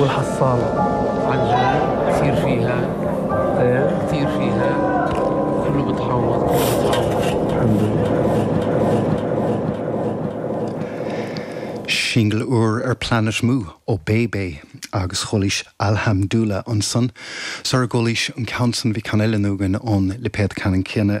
Uathachasán an lee tírdhreacha tírdhreacha Cúlra Togha Cúlra Togha. Singil úr ar Planet Mu ó Bae Bae agus chualaís Alhamdulillah ansan sar a gcualaís an ceann san bhí ceann eile againn ón lipéad ceannann céanna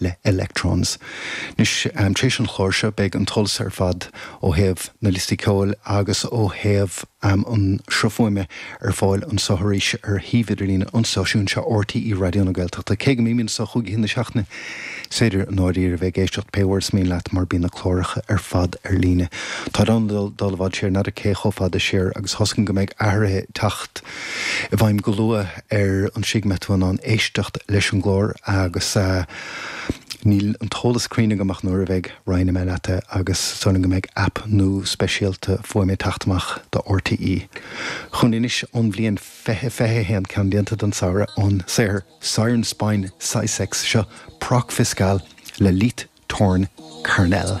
le Electrons. Anois, tar éis an chláir seo, beidh an t-eolas ar fad ó thaobh na liostaí ceoil agus ó thaobh an sruth fuaime ar fáil anseo arís ar shuíomh idirlíne an stáisiúin seo, RTÉ Raidió na Gaeltachta. Cé go mbímid anseo chúig oíche na seachtaine, is féidir i ndáiríre a bheith ag éisteacht pé uair is mian leat mar bíonn na cláracha ar fad ar líne. Tá tú in ann dul i bhfad siar, n'fheadar cé chomh fada siar, agus thosnaigh go mbeidh athruithe ag teacht i bhfeidhm go luath. ar an tslí go mbeidh tú in ann éisteacht leis an gclár agus níl an t-eolas cruinn agam ach nuair a bheidh roinnfidh mé leat é agus samhlaím go mbeidh app nua speisialta fuaime ag teacht amach do RTÉ chugainn anois ón bhliain 20 21 ceann déanta don samhradh an saothar Siren Spine Sysex seo Proc Fiskal le Leith Tornn Carnal.